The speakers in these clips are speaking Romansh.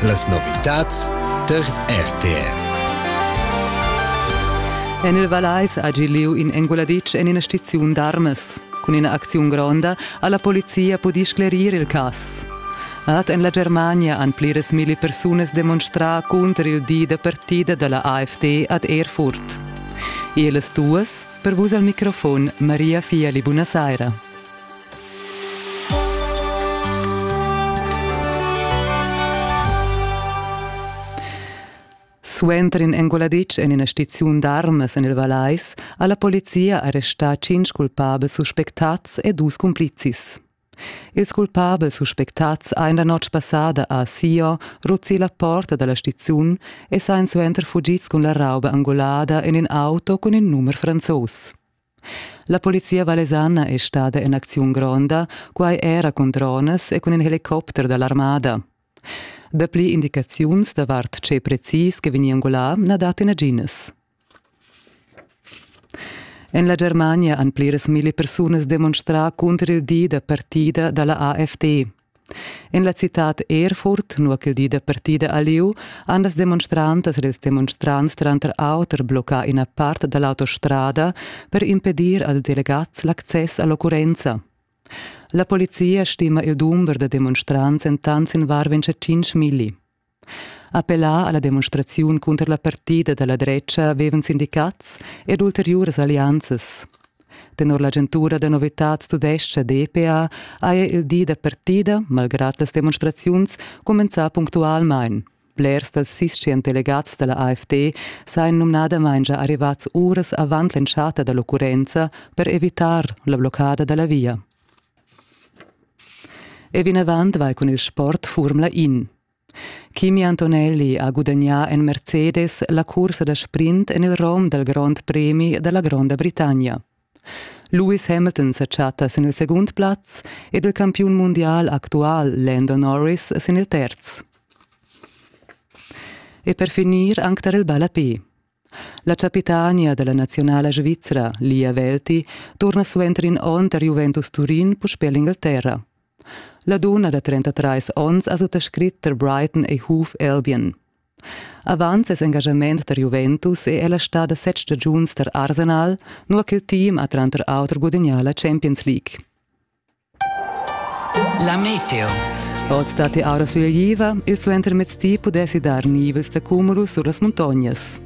Las novitads tar RTR. En il Valeis ha gi lieu in enguladitsch en ina stiziun d'armas. Cun ina acziun gronda ha la polizia pudì sclerir il cass. Ad en la Germania han pliras milli persunas demonstrà cunter il di da partida da la AfD ad Erfurt. Ellas duas, per vus al microfon, Maria Fiali, buonasera. Suenter in enguladitsch en ina stiziun d'armas en il Valais ha la polizia arrestà cinc culpabels suspectads e dus cumplizis. Ils culpabels suspectads ein la notg passada a Sio ruzzi la porta dalla stiziun e sein suenter fugids cun la rauba angolada en in auto cun il numer franzos. La polizia valesana è stada en acziun gronda, quai era cun dronas e cun in helicopter da l'armada. Dapli indicaziuns davart tge precis che vegni angulà na dat naginas. En la Germania han pliras milli persunas demonstrà cunter il di da partida da la AfD. En la citad Erfurt, nua ch'il di da partida a lieu, han las demonstrantas ed ils demonstrants tranter auter bloccà ina part da l'autostrada per impedir als delegads l'access a l'occurrenza. La polizia stima il dumber da demonstrants entant sin varventscha 5 milli. Appellà alla demonstraziun cunter la partida dalla dretga vevan sindicats ed ulteriuras allianzas. Tenor l'agentura da novitads tudescha DPA haja il di da partida, malgrad las demonstraziuns, cumenzà punctualmain. Blers dals sischen delegats dalla AfD sajan numnadamain già arrivats uras avant l'entschatta dall'occurrenza per evitar la bloccada dalla via. E vinavant vai cun il sport Furmla In. Kimi Antonelli ha gudagnà en Mercedes la cursa da sprint en il rom dal Grond Premi da la Gronda Britannia. Lewis Hamilton sa chatta sin il segund plaz ed il campiun mundial actual Lando Norris sin il terz. E per finir anc tar il ballapé. La chapitania dalla naziunala svizra, Lia Welti, turna suenter in onn tar Juventus Turin puspè l'Inglaterra. La dunna da 33 onns ha suttascrit tar Brighton e Hoof Albion. Avant ses engagament tar Juventus è ella stada set stagiuns tar Arsenal, nua ch'il team ha tranter auter gudagnà la Champions League. La meteo. Oz datti aura sulegliva, il suentermezdi pudessi dar nivels da cumulus sur las muntognas.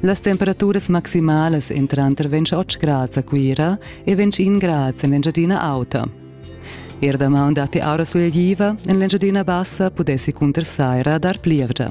Las temperaturas maximalas èn tranter 28 grads a Cuira e 21 grads en l'Engiadina Auta. Er damaun datti aura sulegliva, en l'Engiadina Bassa pudessi cunter saira dar plievgia.